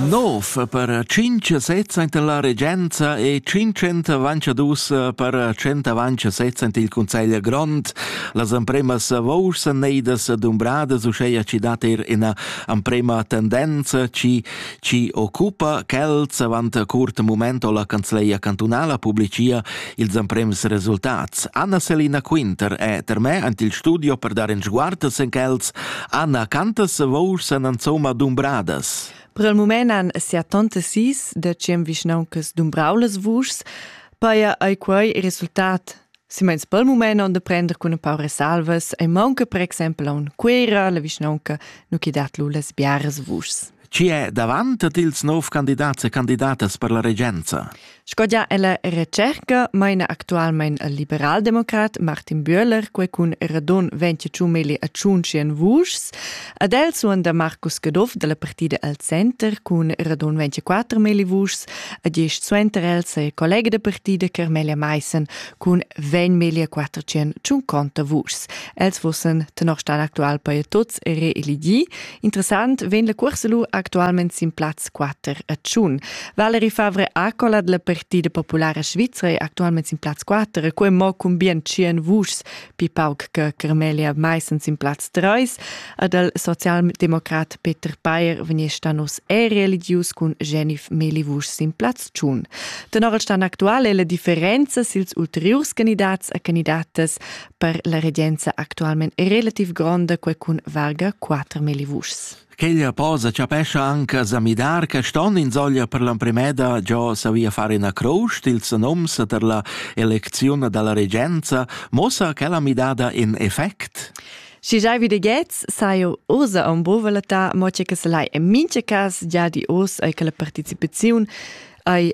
Nov per cinc sezza enta la regenza e cinquant avanciadus per cent avanzasezza enta il Cunsegl grond. Las empremas vouls neidas dumbradas uscheia ci dat er ina emprema tendenza ci, ci occupa quels avant curt moment o la canzleia cantunala publicia ils emprems resultats. Anna Selina Quinter è per me ant il studio per dar en sguartas en quels. Anna, cantas vour san ansoma dumbradas? Per il moment han sia tante sis de cem vischnauncas dumbraulas vuschs. Paia ei quei il resultat Simens pel moment on de prender cun un paar salvas e manca per exempel a un Quera, la vischnaunca, nu chi dat lu las biaras vuschs. Chi è davant ad ils nov candidats e candidatas per la regenza? Sco gia ella retscherca maina actualmain il liberaldemocrat Martin Bühler quai cun radun ventg meli a tschuntschien vuschs. Ad el suonda Markus Caduff da la partida al center cun radun ventiquatter meli vuschs, a gist suenter el saja collega da partida Carmelia Maissen cun vegn meli a quattertschien tschunconta vuschs. Els fussen tenor stan actual per tuts reeligì. Interessant vegn la cuorsa lu actualment sin plaz 4 a Tschun. Valerie Favre Acola della Partida Populara Svizra è actualmente sin plaz 4, quei mo cun bien 100 vuschs, pi pauc che Carmelia Meissen sin plaz 3, ad el socialdemokrat Peter Payer vegni stanos è religius cun Genif Meli Vusch sin plaz Tschun. Tenor el stan aktuale le differenze sils ulteriurs candidats e candidatas per la regenza actualmente è relativ gronda quel cun varga 4.000 vuschs. Quella posa chapescha anche zamidar che ston in soglia per l'emprimeda già savia fare una croce ils noms per la elezione dalla regenza mossa che la midada in effect? Si giai vi de gets sai ursa on bovelata mo che se lai en mince cas già di os ai che la participazione ai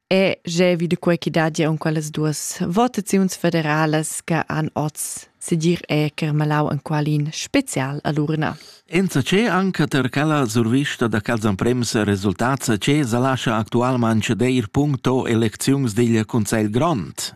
E jeu vid quei che dat jeu en quellas duas votaziuns federalas che han oz segir e Kermalau en qualin special all'urna. Enza c'è anche per quella survista da Calzan Prems resultats che sa lascia actualmente deir punto elecziuns digl Consigl Grond.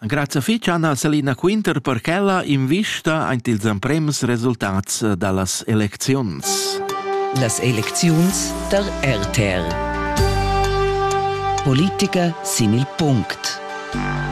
Grazia fetg Anna Selina Quinter per quella invista ant ils emprems resultats dallas elecziuns. Las elecziuns der RTR. Politica sin il punct.